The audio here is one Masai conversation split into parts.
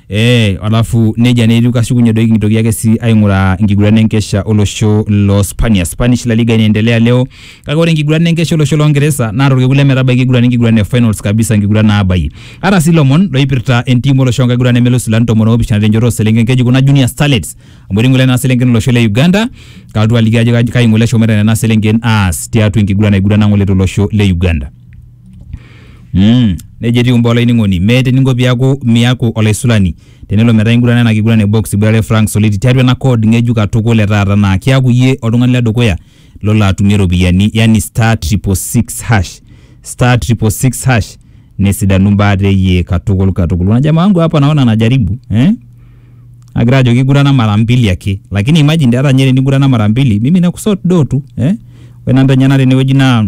Eh, alafu neja netiu kashukunye doi kintoki ake si aing'uraa enkiguran enkesha olosho lo Spania. Spanish La Liga inaendelea leo. Kake ore enkiguran enkesha olosho lo Ngeresa naa torkekun lemetabaiki enkiguran enkiguran e finals kabisa enkiguran naabayie. Ara si lomon loipirta entim olosho enkiguran nemelus ilan tomon oopishana tenchoto oselenken keji kuna Junior Starlets. Amu etii ng'ole nena selenken olosho le Uganda. Kalotu aliki ajo kai ng'ole eshomoita nena selenken aas tiatua enkiguran naigurana ng'ole tolosho le Uganda. Mm, nejo etiu imbaa olainining'oni. Meeta eninko piaku miaku olaisulani tenelo metaa ingurana ena kiguran e box iboitare Frank Soliti tiatua ena code ng'ejuk katukul e taata naa kiaku iyie oltung'ani le dukuya lolo atumie iropiyiani yani star triple six hash. Star triple six hash nesidanu imbaa te iyie katukul katukul. Kuna jamaa wangu hapa naona anajaribu eh? Agira ajoki igurana mara mbili ake. Lakini imagine hata ninye tenigurana mara mbili mimi nakusot do tu eh? Ore namba enyenak tenewueji naa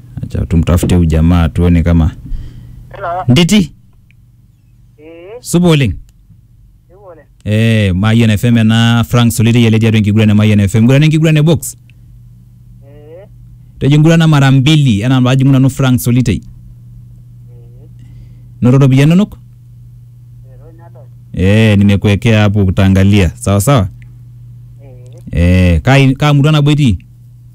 Acha tumtafute huyu jamaa tuone kama Hello. nditi Eh, supa oleng iwole. eh, mayian fm ena frank solitei ele tiatua enkiguran e mayian fm ngurana enkiguran e box Eh, tejo ngurana mara mbili enaa paajing'u nanu frank solitei eh, noto ropiyiani inonok ero nadol. eh, nimekuwekea hapo utaangalia sawa sawa Eh, eh, kaa kaa murua nabo itii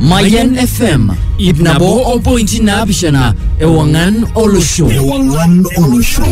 Mayan FM ip nabo o pointi naapishana ewang'an olosho. Ewang'an olosho.